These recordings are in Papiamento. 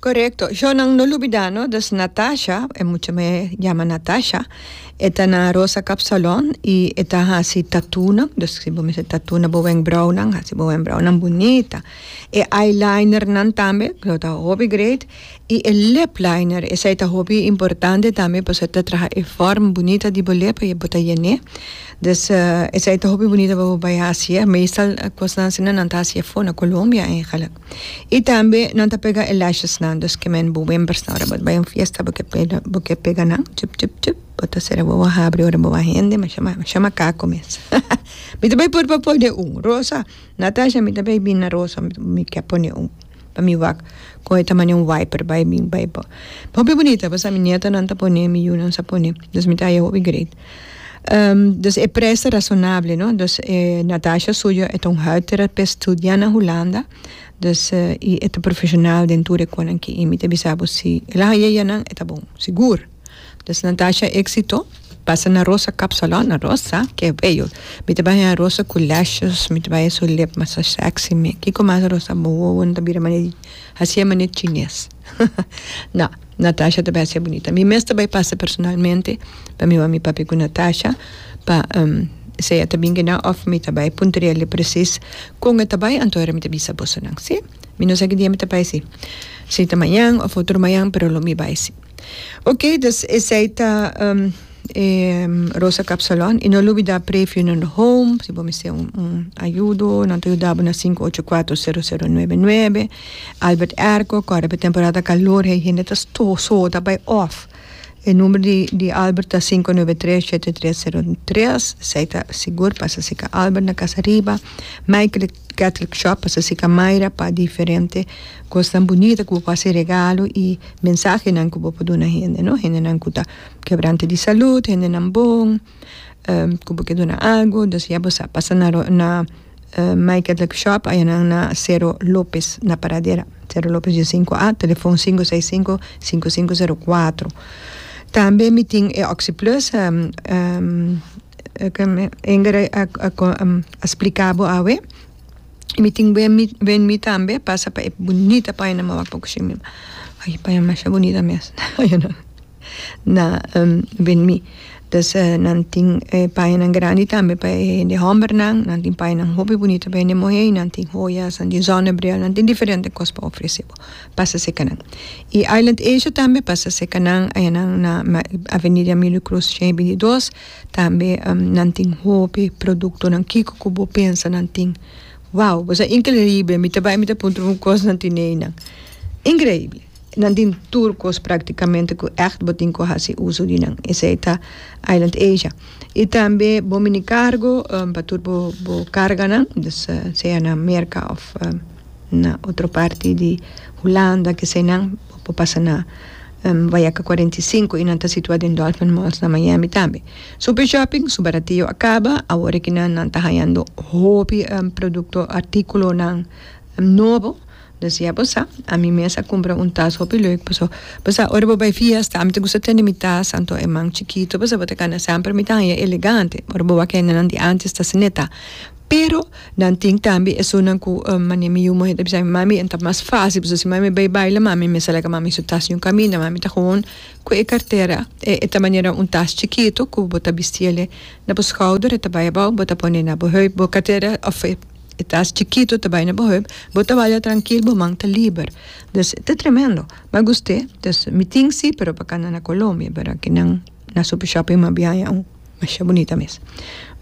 Korekto. Shor nan no lubidá no dus Natasha, e mucha me yama Natasha, e ta na Rosa Kapsalon i e ta hasi tatunan, dus si bo mester tatu na bo wenkbraunan hasi bo wenkbraunan bunita. E eyelinernan tambe lo ta hopi great i e lip liner esei ta hopi importante tambe pasobra e ta traha e fòrm bunita di bo lip pasobra bo ta yen'é. Dus esei ta hopi bunita pa bo bai hasié, meestal kosnan asina nan ta hasié for na Colombia. I tambe nan ta pega e lashesnan, dus ke men bo wen persona ora bo ta bai un fiesta bo ke pega bo ke pega nan chup chup chup bo ta ser bo a habri ora bo a hende ma shama ma shama kako mes mi ta bai por pa pone un rosa Natasha mi ta bai bini na rosa mi ke pone un pa mi wak kohe ta mane un wiper bai bin bai bo hopi bonita pasha mi nietonan ta pone mi yunan sa pone dus mi ta haya hopi great. Um, dus e prijs ta razonabel, no. Dus e Natasha suyo e ta un huidtherapist studia na Hulanda, dus eh, y e ta profesional den tur e conan aki. Y mi ta bisa bo, si el a haya eyanan, e ta bon, sigur. Dus Natasha exito, pasa na Rosa Cup Salon, na Rosa, que bello. Mi ta bai haya Rosa cu lashes, mi ta bai haya su lip masa sexy, mi, kico mas Rosa, bo wowo no ta bira mane di, hacia mane chines. Na, Natasha ta bai haci e bunita. Mi mes ta bai pasa personalmente pa mi mami papi cu Natasha pa si ella ta bin kina of mi ta bai puntriali precies con e ta bai anto mi ta bisa bosonan. Si? Mi no sa ki dia mi ta bai si. Si ta mañan of otro mañan pero lo mi bai si. Ok, dus esey ta. E Rosa Cap Salon y no lubida Pre Funeral Home si bo mester un ayudo nan ta yuda bo na sinku ocho kuater sero sero nuebe nuebe Albert Airco kore pa temporada calor he hende ta soho ta bay off e number di Albert ta sinku nuebe tres shete tres sero tres esey ta sigur pasa si ka Albert na casa riba Michael Catholic Shop pasa si ka Myra pa diferente cosnan bunita ku bo por haci regalo y mensahenan ku bo por duna hende no hende nan ku ta. Kebrante di salud, hendenan bon ku bo ke duna algu, dus ya bo sa pasa na na Mike Catholic Shop, ayanan na Cero Lopez na Paradera, Cero Lopez di sinku a, telefòn sinku seis sinku, sinku sinku sero kuatro. Tambe mi tin e Oxi Plus, Inger a splika bo awe, mi tin Wen Mi tambe, pasa pa e bunita painan, mi wak pa kushinan, mi masha bunita mes. na ven mi dus nan tin e payanan grandi tambe pa e hende hombernan nan tin payanan hopi bunito pa hende muhé y nan tin hoyanan di zonnebril nan tin diferente cos pa ofrece bo pasa seca nan y island asia tambe pasa seca nan ayan nan na avenida emilio cruz cien y binti dos tambe nan tin hopi productonan kico cu bo pensa nan tin wow bosa increible mi ta bay mi ta puntra un cos nan tin ey nan increible. Nan tin tur kos praktikamente ku ègt bo tin ku hasi uso di nan. Esei ta Island Asia. I tambe bo mini kargo pa tur bo bo karganan, dus sea na Merka òf na otro parti di Hulanda, kesei nan bo pasa na Vayaka kuarenta i sinku i nan ta situá den Dolphin Malls na Miami tambe. Super Shopping su baratio a kaba, awor e ke nan nan ta hañando hopi produkto, artíkulonan nobo. Nos ya bo sa, ami mes a cumpra un tas hopi leuk, paso bo sa ora bo bay fiesta ami ta gusta tene mi tas anto e man chikito, paso bo ta cana semper mi ta haya elegante, ora bo wak hende nan di antes ta asina e ta, pero nan tin tambe esunnan cu mane mi yu muhé ta bisami, mami e ta mas facil, paso si mami bay baila mami mester a laga mami su tas diun caminda, mami ta gewoon cu e cartera e e ta manera un tas chikito cu bo ta bisti ele na bo schouder e ta bay abao bo ta pone na bo heup bo cartera of e. E tas chikito ta bai na bo heup, bo ta waya trankil, bo man ta liber. Dus, ta tremendo. Ma guste, dus mi tin si, pero pa kanda na Colombia, bera ki nan na Super Shopping mi a biaha ya un masha bunita mes.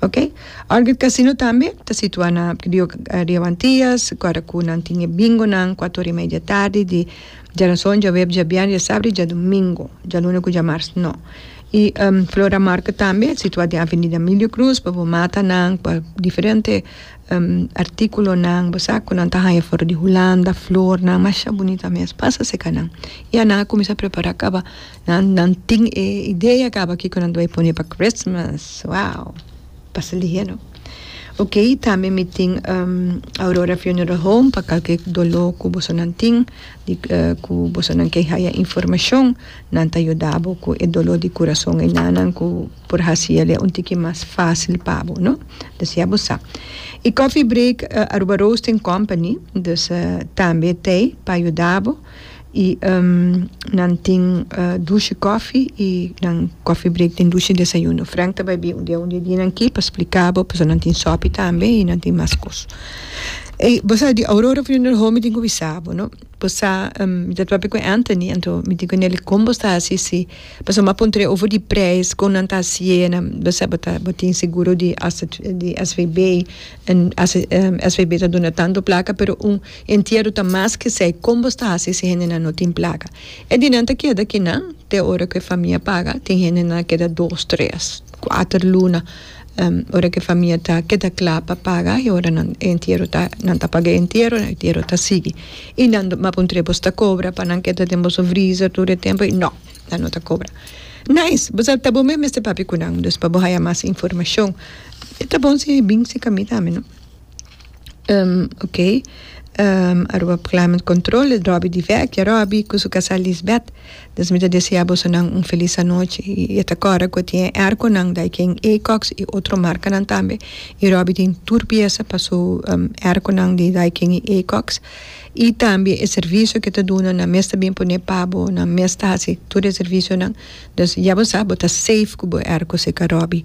Ok. Orchid Casino tambe ta situa na Rio Rio Antillas, kora ku nan tin e bingonan kuat ora i media tardi di djaransó, djaweps, djabièrnè, djasabri, djadumingu. Djaluna ku djamars no. Y Flora Market tambe a situa den Avenida Milio Cruz pa bo mata nan pa diferente articulonan, bo sa cu nan ta haya for di hulanda, flornan masha bunita mes, pasa seca nan. Y ya nan a cuminsa prepara caba, nan nan tin e idea caba kico nan ta bay pone pa Christmas, wow! Pasa lihe no. Ok, tambe mi tin Aurora Funeral Home pa calke dolor cu bosonan tin. di ku bosonan ke haya informashon nan ta yuda bo ku e doló di kurason ei nan nan ku por hasi el un tiki mas fásil pa bo no dus ya bo sa i coffee break Aruba roasting company dus tambe tei pa yuda bo i nan tin dushi kòfi i nan coffee break tin dushi desayuno Frank ta bai bin un dia un di e dinan aki pa splika bo pasobra nan tin sòpi tambe i nan tin mas kos. Ey, bo sa di Aurora Funeral Home mi tin cu bisa bo, no? Bo sa, mi ta papia cu Anthony, anto mi tin cu Nelly con bo ta haci si pasobra mi a puntra over di prijs con nan ta hacienda, bo sa bo ta, bo tin seguro di svb, en svb ta duna tanto placa pero un entierro ta mas cu esey, con bo ta haci si hendenan no tin placa? E di nan ta keda kinan te ora cu e famia paga, tin hendenan a keda dos, tres, cuater luna. Ora ke famia ta keda kla pa paga e ora nan e entiero ta nan ta paga e entiero e entiero ta sigui i nan map un tre bosta kobra pa nan keda den boso vriza tur e tempo nò nan no ta kobra nice bo sa ta bo mes mester papia ku nan dus pa bo haya mas informashon ta bon si e bin si ka mi tambe no. ok. Aruba Climate Control e Robby di Vecchia. Robby cu su casa Lisbeth. Entonces mi ta desea bosonan un feliz anochi. Y e ta cora cu e tin e airconan Daikin Acox y otro marcanan tambe. Y Robby tin tur pieza pa su airconan di Daikin y Acox. Y tambe e servicio cu e ta duna nan mes ta bin pone pa bo, nan mes ta hasi tur e servicionan. Entonces ya bo sa bo ta safe cu bo airco seca Robby.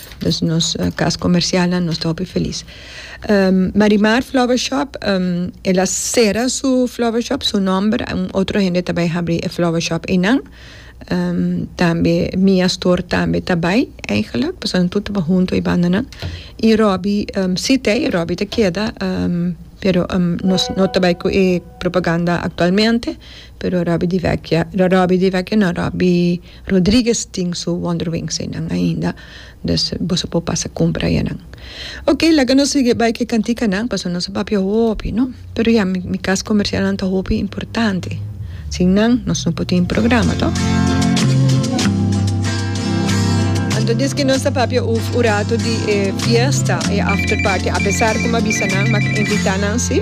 Nos nos cas comercialnan nos ta hopi feliz Marimar flower shop el a cera su flower shop su nomber un otro hende ta bay habri e flower shop eynan tambe Mia store tambe ta bay eigenlijk pasobra nan tur ta bay hunto e bandanan y Robbie si te Robbie ta keda pero nos no ta bay cu e propaganda actualmente. Pero Robby di Vecchia Robby di Vecchia no Robby Rodriguez tin su wonder wings einan ainda dus boso por pasa cumpra enan ok laga nos sigue bay cu e cantikanan pasobra nos a papia hopi no pero ya mi cas comercialnan ta hopi importante sin nan nos no por tin programa toh anto desque nos a papia uf un rato di e fiesta e after party apesar cu mi a bisa nan mi a invita nan si.